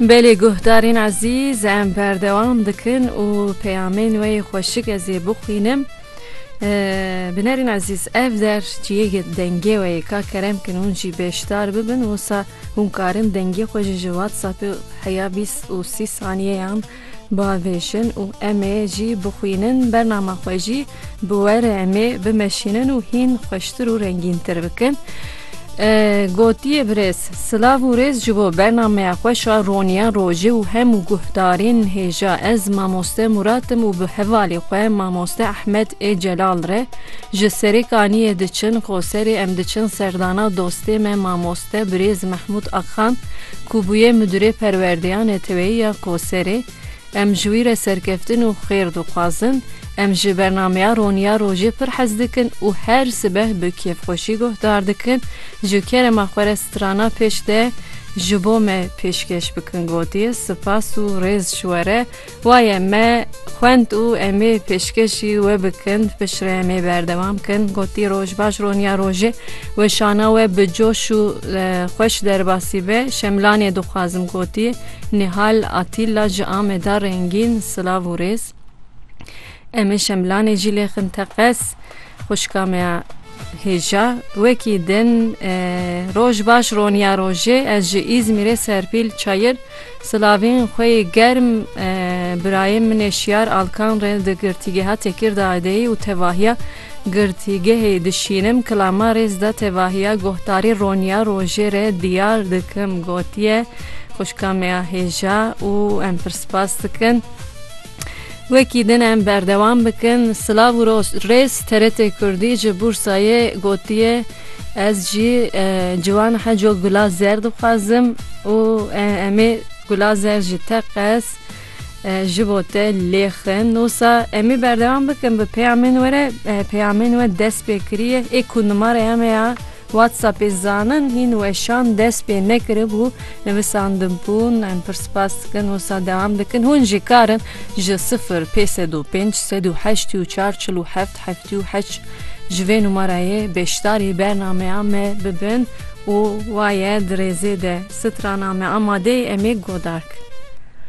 Belê guhdarên ezîz em berdewam dikin û peyamên wê yê xweşik ez ê bixwînim. Binerên ezîz ev der ciyê dengê we yê ka kerem kin hûn jî bêşdar bibin wisa hûn karin dengê xwe ji ji WhatsAppê heya bîst û sî saniyeyan Bavêşin û em ê jî bixwînin bernama xwe jî bi were em ê bimeşînin û hîn xweştir û rengîntir bikin. Gotiye birêz silav û rêz ji bo bernameya xweş a Roniya Rojê û hemû guhdarên hêja ez mamoste Murat im û bi hevalê xwe mamoste Ehmed ê Celal re ji Serêkaniyê diçin Qoserê em diçin serdana dostê me mamoste de birêz Mehmûd Axan ku bûye Mudîrê Perwerdeya Neteweyî ya Koserê, Em ji wî re serkeftin û xêr dixwazin. Em ji bernameya Roniya Rojê pir hez dikin û her sibeh bi kêfxweşî guhdar dikin. Ji kerema xwe re strana pêş de ji bo me pêşkêş bikin. Gotiye, Sipas û rêz ji we re. Waye me xwend û em ê pêşkêşî we bikin, piştre em ê berdewam bikin. Gotî roj baş roniya rojê weşana we bi coş û xweş derbasî be. Şemlanê dixwazim gotî Nihal Atîlla ji Ameda rengîn silav û rêz. Em ê şemlanê jî lêxin teqez. Xwişka me ya hêja wekî din roj baş roniya rojê ez ji Îzmîrê Serpîl Çayir silavên xwe yê germ birayê min ê Şiyar Alkan re di girtîgeha Tekîrdayê de yê û tevahiya girtîgehê dişînim kilama rêz da tevahiya guhdarî roniya rojê re diyar dikim gotiye xwişka me ya hêja û em pir spas dikin. Wekî din em berdewam bikin. Silav û rêz TRT Kurdî ji Bûrsayê gotiye ez jî ciwan heco gula zer dixwazim û em ê gula zer ji te qez ji bo te lêxin. Nosa em ê berdewam bikin bi peyamên we re peyamên we dest pê kiriye ê ku nimare em ya WhatsAppê zanin hîn weşan dest pê nekiribû, nivisandibûn, em pir spas dikin wisa dewam dikin, hûn jî karin ji sifir pê sed û pênc sed û heştî û çar çil û heft heftî û heşt ji vê numarayê beşdarî bernameya me bibin û waye di rêzê de strana me amadeyê em ê guhdar kin.